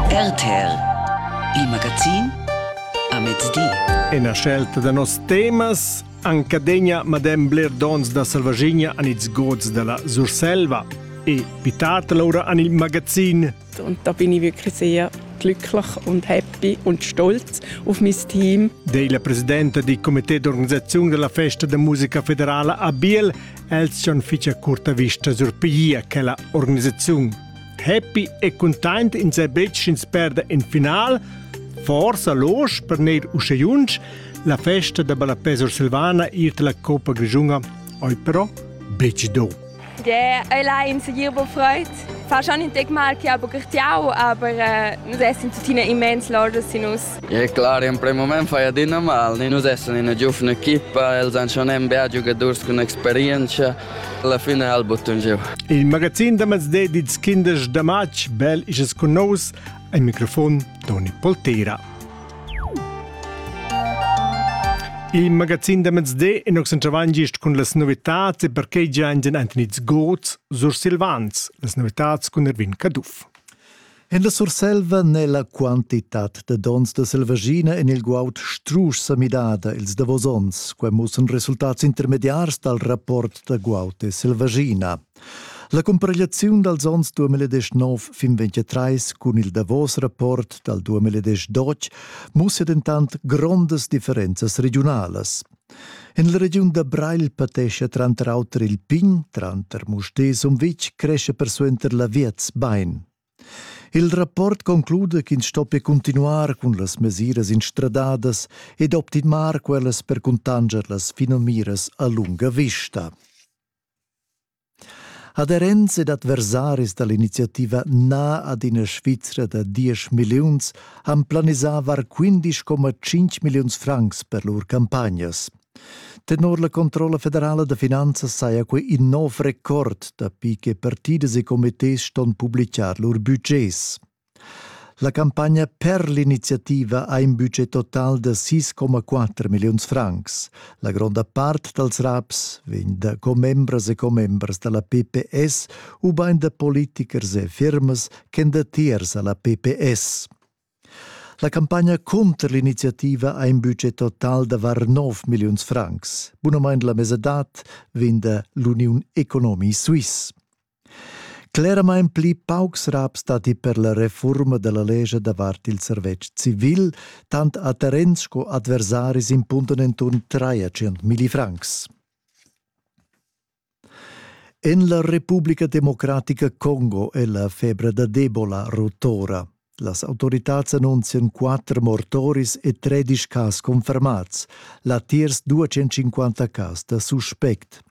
RTL Il magazin a mezdi. Ina scelta da nos temas Ancadegna madem bler dons da Salvagigna an ils gods della Surselva e pitat laura an il magazin. Und da bin ich wirklich sehr glücklich und happy und stolz auf mein Team. Dei la presidenta di comité d'organisazione della festa de musica federala a Biel, els schon ficia curta vista sur piglia che la organizzazione. Happy e cuntent ins è betg ins perda in final, forsa losch per neir usche junsch, la festa da ballapesor Silvana iert la Coppa Grigiunga, oi però betg do. Ja, allein segier bo freut. Fa schon in Tag mal che aber gertiau, aber äh, nus essen tuttina immens lordes in us. Ja, clar, in prem moment fai adina mal. Nus essen in una giovane equipa, els han schon ein bel giocators con experienza. Alla fine ha il bottun giu. Il magazin da mezde di tschindesch da matg, bel isas cun nous, al microfon Toni Poltera. Il magazin da mezde in occentavan gist cun las novitats e perquei gian den Anthony Goz, Sur Silvans, las novitats cun Erwin Caduff. En la Surselva n'è la quantitad da donns da selvaschina en il guaud strusch sa midada ils davos onns. Quai mussan resultats intermediars dal rapport da guaud e selvaschina. La comparegliaziun dals onns 2019 fin 2023 cun il davos rapport dal 2012 mussia dentant grondas differenzas regiunalas. En la regiun da Breil patescha tranter auter il pign, tranter Mustér e Sumvitg crescha persuenter l'aviez bain. Il rapport concluda ch'ins stoppia continuar cun las mesiras instradadas ed optimar quellas per cuntanscher las finamiras a lunga vista. Aderents ed adversaris dall'iniziativa Na ad ina Svizra da diesch milliuns han planisavar quindisch coma tschinch milliuns francs per lur campagnas. Tenor la controlla federala da finanzas saja quei in nov record dapi che partidas e comités ston publicar lur budgets. La campagna per l'iniziativa ha in budget total da 6,4 milliuns francs. La gronda part dals raps vegn da commembras e commembras da la PPS ubain da politichers e firmas ch'èn datiers a la PPS. La campagna cunter l'iniziativa ha in budget total da var 9 milliuns francs. Bunamain la mesadad vegn da l'Uniun Economie Suisse. Cleramain pli paucs raps datti per la refurma da la lescha davart il servetsch civil, tant a terrens sco adversaris impundan enturn 300.000 francs. En la Repubblica Democratica Congo è la febra da d'Ebola rotora. Las autoritads annunzian quatter mortoris e 13 cas confermats, latiers 250 cas da suspect.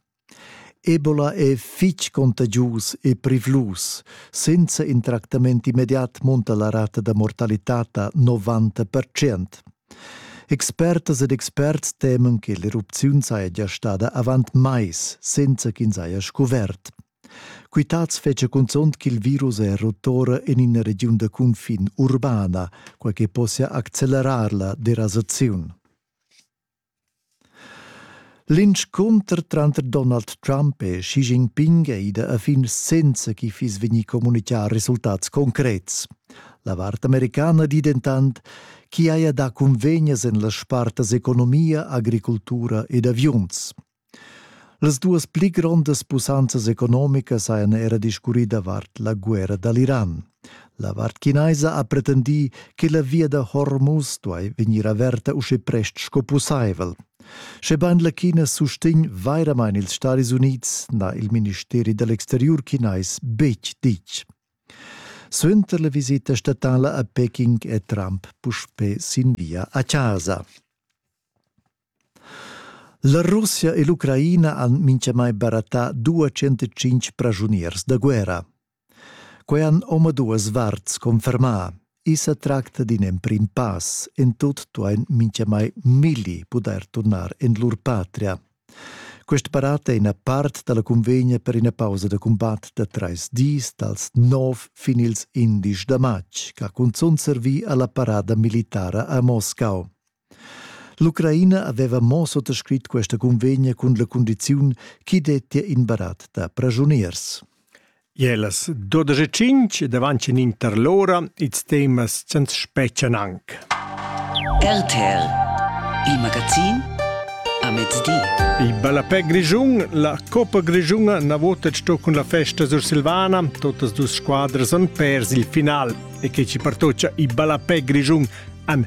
Ebola è fitg contagius e privlus. Senza in tractament immediat munta la rata da mortalitad da 90 percent. Expertas ed experts temen che l'erupziun saja gia stada avant mais, senza ch'ins haja scuvert. Quitads fetgia cunzont ch'il virus è rotora en ina regiun da cunfin urbana, quai che possia accelerar la derasaziun. L'inscunter tranter Donald Trump e Xi Jinping ei da a fin senza chi fiss vegni communicà resultats concrets. La vart americana di dentant chi haja dà cunvegnas en las spartas economia, agricultura ed aviuns. Las duas pli grondas pussanzas economicas hajan era discurrì davart la guerra da l'Iran. La vart chinaisa ha pretendì che la via da Hormuz duai vegnir averta uschè prest sco pussaivel. Schebain la China sustegn vairamain ils Stadis Unids, n'ha il ministeri da l'exteriur chinais betg ditg. Suenter la visita statala a Peking è Trump puspè sin via a casa. La Russia e l'Ucraina han mintgamai barattà 205 praschuniers da guerra. Quai han omaduas varts confermà. I sa tracta d'in emprim pass. En tut duain mintgamai milli pudair turnar en lur patria. Quest barat è ina part da la convegna per ina pausa da cumbat da trais dis dals nov fin ils indisch da matg, ch'ha cunzunt servì a la parada militara a Moscau. L'Ucraina aveva mo suttascrit questa convegna cun la cundiziun ch'i dettia in barat da pragiuniers. Je las 12.05 davanti in inter l'ora ils temas sans speccian anc. RTL, il magazin a mezdi. Il ballapè grigiun, la Coppa Grigiuna na vota sto cun la festa sur Silvana, totas dus squadras han pers il final e che ci partocia il ballapè grigiun an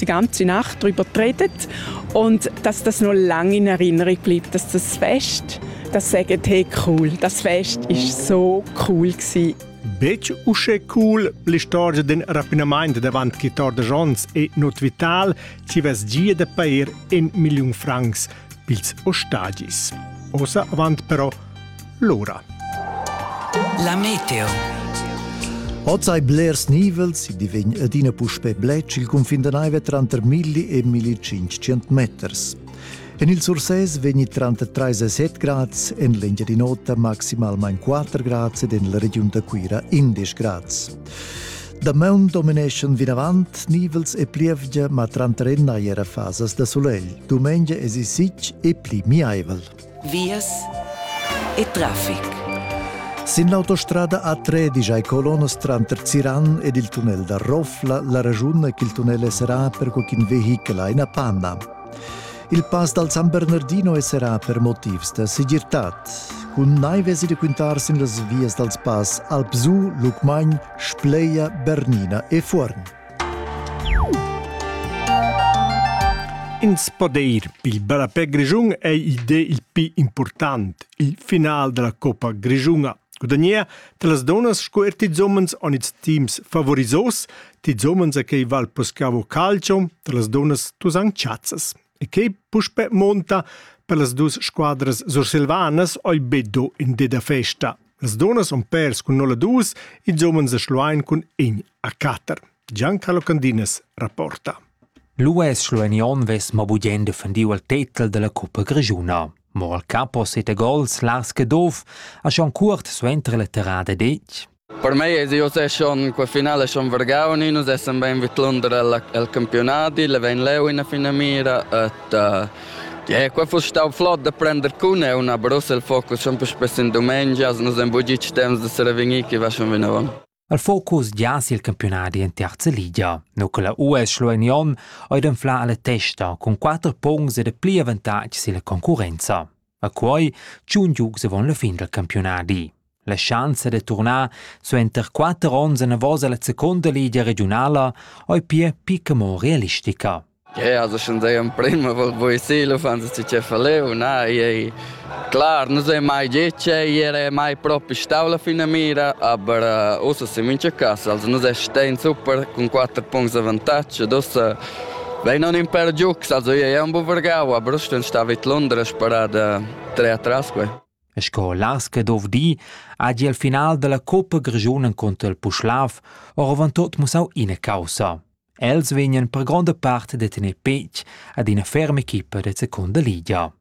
die ganze Nacht darüber geredet und dass das noch lange in Erinnerung bleibt, dass das Fest, das sagen hey cool, das Fest ist so cool gewesen. Betg uschè cool l'istorgia d'in rapinamaint davant quitar de Jons è not vital, ci vess gia da pair in milliun francs pils ostagis. Osa avant però l'ora. La meteo. Oz hai blers nivels, i divegn adina puspè bletsch il cunfin da naiva tranter 1000 e 1500 meters. En il Sursès vegni tranter 3 e 7 grads, en l'Engiadin'Ota maximalmain 4 grads ed en la regiun da Cuira 11 grads. Damaun domineschan vinavant nivels e plievgia, ma tranter ennai era fasas da sulegl. Dumengia esi sitg e pli miaivel. vias e traffic. Sin l'autostrada A13 ai colonas tranter Ziran ed il tunnel da Rofla la ragiun ch'il tunnel esserà per co ch'in vehichel ha ina panna. Il pass dal San Bernardino esserà per motivs da segirtad. Cun naiv esi da quintar sin las vias dals pass Alpsu, Lucmagn, Spleia, Bernina e Fuorn. Ins po dir il ballapè grischun ei ide il pi important. Il final della Coppa Grischuna gudagnea las donas sco er tis homens on its teams favorizos, tis homens a che val poscavo calcio, las donas tus han chazzas. E che puspe monta per las dus squadras sursilvanas oi beddo in de da festa. Las donas on pers cun nolla dus, ils homens a Schluein cun in a quatter. Giancarlo Candinas rapporta. L'US Schlueinion ves ma bugen defendiu al tetel della Coppa Grigiuna. Mo al capo sete gols las che dov, a Jean Curt suentre la terrada dec. Per mei es eu se schon qua finala schon vargau nin, nus essan bain vidlunder al, al campiunadi, la vain leu ina finamira et uh, yeah, qua fuss stau flot da prender cun eu na Brussel focus schon puspes in dumengia, nus hem bugi ich temps da serevegnir chi va schon vinavon. Al focus gias il campiunadi in terza ligia, no che la US Schlueinion ha inflà alla testa cun quatter punts ed pli avantatg silla concurrenza. A quai tschun giugs avon la fin dal campiunadi. La schanza da turnar suenter quatter onns enavos alla seconda ligia regiunala ei pia picca mo realistica. Ja, also schon sei in prima, wo ich seele fan sie ci verleu, na, ei klar, non sei mai dice, era mai proprio stavla fino a mira, aber uh, usa si mince casa, also non sei stein super con quattro punti di vantaggio, dus Vein on in per giugs, also ei ei ambo vargau a Bruston sta vid Londres parada tre atras quei. E sco las che dov di, agi al final della Coppa Grigiunen contro il Puschlav oravan tot musau ina causa. Els vegnan per gronda part de tener petg ad ina ferma equipa de seconda ligia.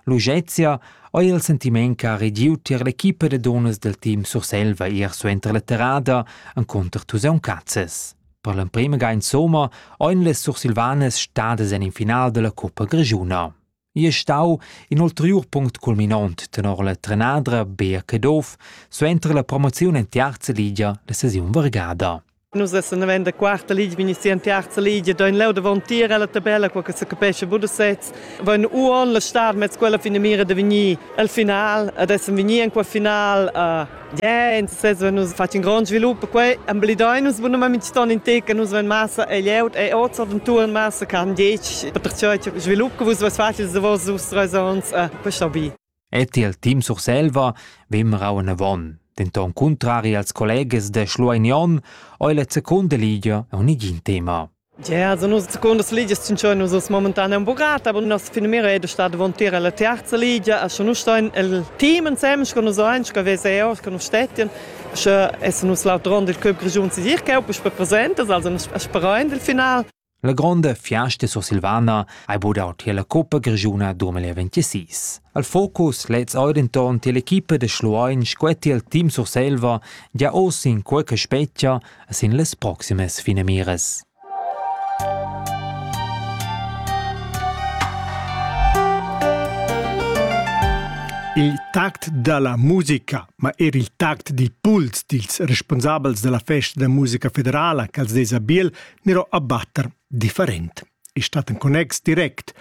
Luxezia ho il sentiment che ha regiu tier l'equipa de donas del team Surselva ir suenter la terrada en contr Tuseun Cazzes. Per l'emprema ga insomma ein les sursilvanas stadas en in final della Coppa Grigiuna. Ia stau in ulteriur punct culminont tenor la trenadra Bea Caduff suenter la promoziun en terza ligia la sesiun vargada. Nus essen in der quarta Liga, bin ich sie in terza Liga, da in leu davon tier alla tabella, qua che se capesce wo du setz. Wenn uon la star mezz quella fine mira de venir al final, ad essen venir in quel final, uh, Yeah, interess wenn nus fatg in grond svilup quei embellidein nus bunamain ston in tec che nus vein massa e leu e oz aventuren massa che han detg perciò che svilup che vus vos facils davos dus treis ons e questa bi. Et il team Surselva vem rauen avon, denton contrari als colleges de Schlueignon, oi la seconda ligia un igin tema. Ja, za nus secundas ligias tschintschan nus as momentan ün buccat, aber nossa finamira è da star davantir alla terza ligia, a scha nus stain el team insems con nus ein, scha vesa eos con nus stettian, scha essan nus l'autrond il club grischun Sisirchau puspè presentes, also as sperain del final. La gronda fiasta sursilvana ha budau tier la Coppa Grischuna 2026. Al focus lez eir denton tier l'equipa da Schluein scuetti il team Surselva gia oz in quei che spetgia sin las proximas finamiras. Il tact da la musica, ma er il tact di puls dils responsabels della festa da musica federala ch'als des a Biel nero a batter different. E stat en connex direct,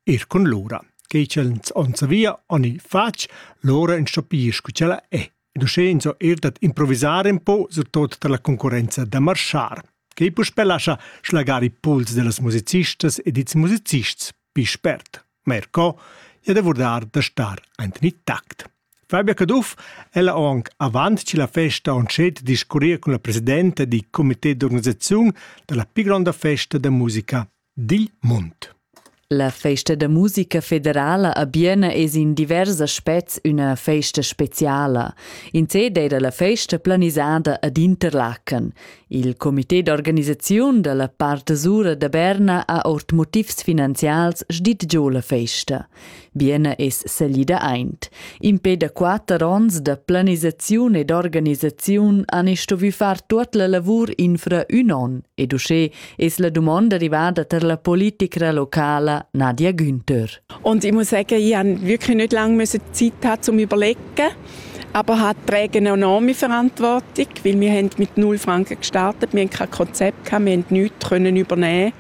er con l'ora. Che ins on savia, oni fac, l'ora in stopir cu cella è. ed uschè ins ho eir dad improvisar un po, surtot tar la concurrenza da marschar, che puspè lascha schlagar i pols da las musicistas ed ils musicists pli spert. Ma er co, ja davurdar da star aint in tact. Fabia Caduff ella ho anc avant che la festa on scet discurrir cun la presidenta di comité d'organisaziun da la pi gronda festa da musica dil mund. La festa da musica federala a Biena es in divers aspets üna festa speciala. In se d'eira la festa planisada ad Interlaken. Il comité d'organisaziun da la part sura da Berna ha ord motivs finanzials sdit giò la festa. Bienna es salida aint. Impè da quatter ons da planisaziun ed organisaziun han stuvü far tuot la lavur infra ün on ed uschè es la dumonda rivada tar la politicra locala Nadia Günther. Und ich muss sagen, ich habe wirklich nicht lange müssen Zeit gehabt, um überlegen. aber hat trägt eine enorme Verantwortung, weil wir haben mit null Franken gestartet, wir hatten kein Konzept, wir konnten nichts übernehmen.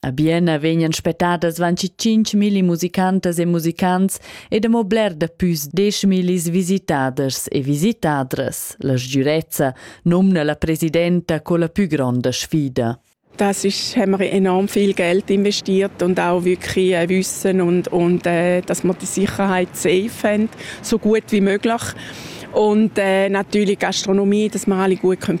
A Bienna vegnan spettadas vanci 5.000 musicantas e musicants ed amo bler da püs 10.000 visitaders e visitadras. La sgürezza nomna la presidenta co la pü gronda sfida. Das ist, haben wir enorm viel Geld investiert und auch wirklich ein Wissen und, und äh, dass wir die Sicherheit safe haben, so gut wie möglich. Und äh, natürlich Gastronomie, dass wir alle gut können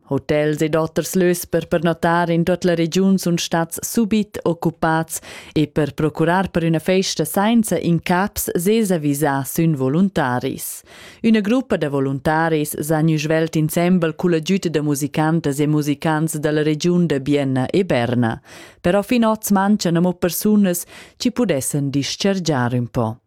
Hotels ed oters lös per pernotar in tuot la regiun sun stats subit occupats e per procurar per üna festa sainza incaps sesa visà sün voluntaris. Üna gruppa da voluntaris s'ha gnü svelt insembel culla giüta da musicantas e musicants da la regiun da Bienna e Berna. Però fin hoz mancan amo persunas chi pudessan dischargiar ün po.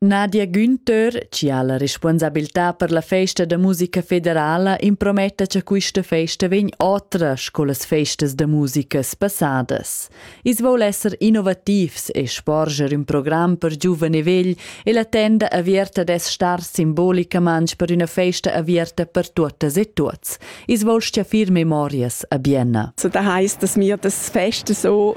Nadia Günther, chi ha la responsabiltà per la festa da musica federala, imprometta cha quista festa vegn otra sco las festas da musica passadas. I's voul esser innovativs e sporger ün program per giuven e vegl e la tenda avierta dess star simbolicamang per üna festa avierta per tuottas e tuots. I's voul stiafir memorias a Bienna. So das heisst, dass wir das Feste so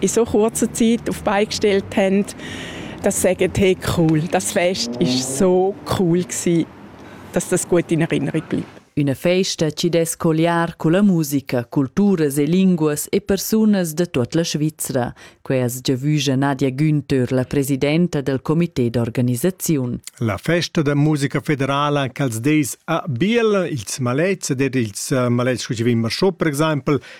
in so kurzer Zeit auf die Beine gestellt haben, dass sie sagen, hey cool, das Fest ist so cool gewesen, dass das gut in Erinnerung bleibt. Üna festa chi dess colliar culla musica, culturas e linguas e persunas da tuot la Svizra. Quai as giavüja Nadia Günther, la presidenta del comité d'organisaziun. La festa da musica federala ch'als des a Biel, ils malets ed er ils malets scu chi vegn marschò per exaimpel,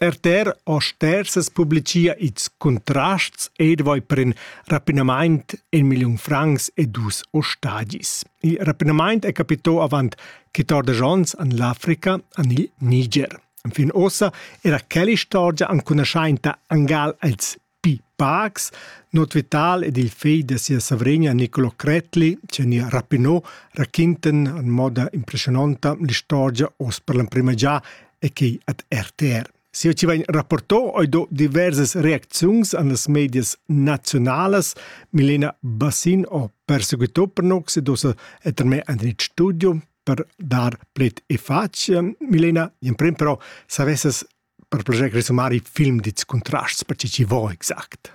Erter ho stersas publichia its Contrasts edvoi per ün rapinamaint in milliun francs e dus ostagis. Il rapinamaint è capitò avant 14 ons an l'Africa an il Niger. Enfin uossa era quell'istorgia ancunaschainta angal als Pi pacs, Not Vital ed il fegl da sia savregna Nicolo Cretli, Cenia Rapinot, raquintan en moda impressiononta l'istorgia oz per l'emprima già e quei ad RTR. Sia ci vegn rapporto oi do diversas reacziuns an las medias nazionalas. Milena Bassin o perseguito per nox ed osa et me André Studio per dar plet e fac. Milena, in prim però, savessas per proget resumar i film dits contrasts per chi vo exact.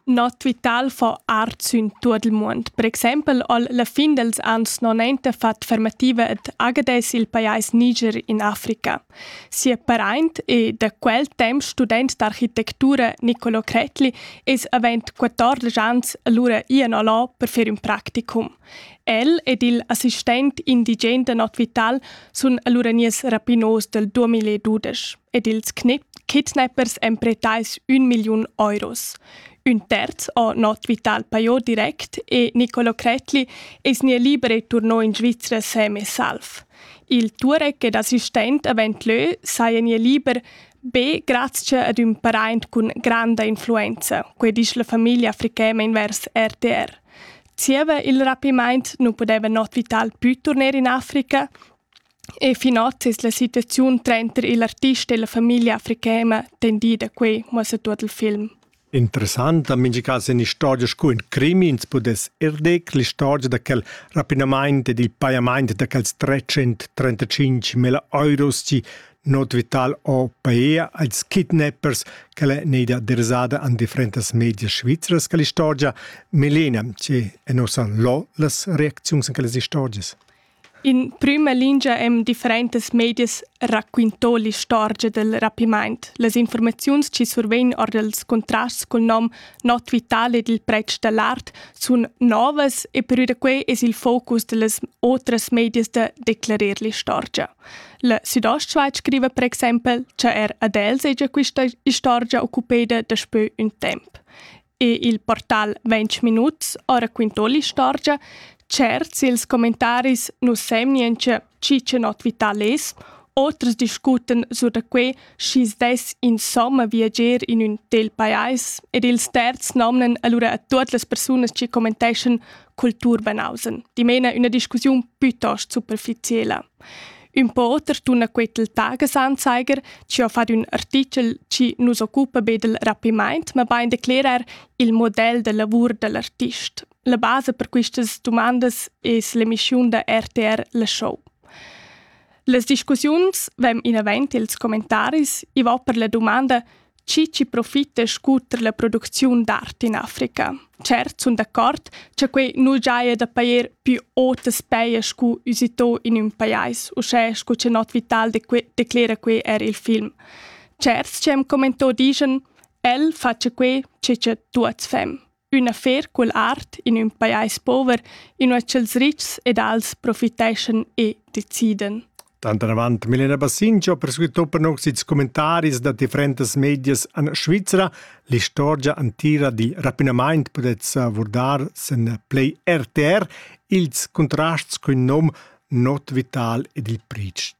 No tvital fa art sün tuot il muond. Per exaimpel al la fin dels ans 90 fat fermativa ed agades il pajais Niger in Africa. Sia paraint e da quel temp student d'architettura Nicolo Cretli es avent 14 ans allura ian alò per fer ün practicum. El ed il assistent indigen da Nord Vital sun allura nies rapinos del 2012 ed ils kidnappers èn pretais un milliun euros. Un terz ho Nord Vital paiò direct e Nicolo Cretli es nie libere turnò in Svizzera semi-salv. Il Turek ed assistent avent leu saja nie liber be grazie ad ün paraint cun granda influenza, quei disch la famiglia africema invers RTR. Zieva il rapimaint nu pudeva not Vital plü turner in Africa e finot es la situaziun trainter il artist e la famiglia africana tendida quai, muossa tuot il film. Interessant, mincha cas in istorgia scu ün crimi, ins pudess eir dir che l'istorgia da quel rapinamaint ed il pajamaint da quels 335.000 euros chi Not vital ò paea als kidnappers ch'el è neida dersada an differentas medias svizras quella istorgia, melena, che en ossan lo las reacziuns en quellas istorgias. In prüma lingia em differentas medias raquintò l'istorgia del rapimaint. Las informaziuns chi survegn or dels contrasts col nom Not Vital ed il pretsch dall'art sun novas e perü da quei es il focus dellas otras medias da declarer l'istorgia. La Südostschweiz scriva per exempel che er ad el segia questa istorgia occupeda daspö ün temp. E il portal 20 minuts ha racquintò l'istorgia, Certs ils commentaris nu semnien che chi che not vital es, oters discuten su da quei schi's dess insomma viager in ün tel pajais ed ils terzi nomnen allura a tuot las persunas che commentescen Kulturbanausen. Dimena üna discussiun plütost superficiela. Ün po oter tuna quai til Tagesanzeiger, chi ho fat ün artichel chi nu's occupa be dal rapimaint, mabain d'eclairer il model da lavur da l'artist. La basa per quistas dumandas es l'emischiun da RTR La Show. Las discussiuns vain inavant i'ls commentaris. I va per la dumanda chi chi profita scuter la producziun d'art in Africa. Cert sun d'accord cha quei nu giaja da pajer più otas peia scu usitò in ün pajais, uschè scu cha Not Vital declera que er il film. Certs ci hem commentò dischan, el facia que che cha tuots fem. Üna fer cull art in ün pajais pover, inua cha'ls rics ed als profiteschan e decidan. Tantanavant Milena Bassinci ha perseguitò per nox ils commentaris da differentas medias en Svizra. L'istorgia antira dil rapinamaint podetz vurdar sen Play RTR, ils contrasts cun nom Not Vital ed il Priest.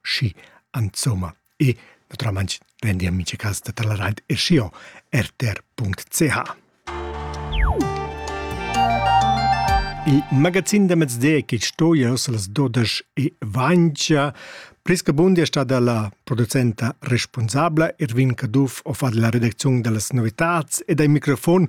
Schi, insomma, e naturalmain rendi amici e cas da taleraint e sio rtr.ch. Il magazin da mezde che sto ios las 12 e vancia Priska Bundi è stata la producenta responsabla, Irvin Caduff ho fatto la redazione delle novità e dai microfon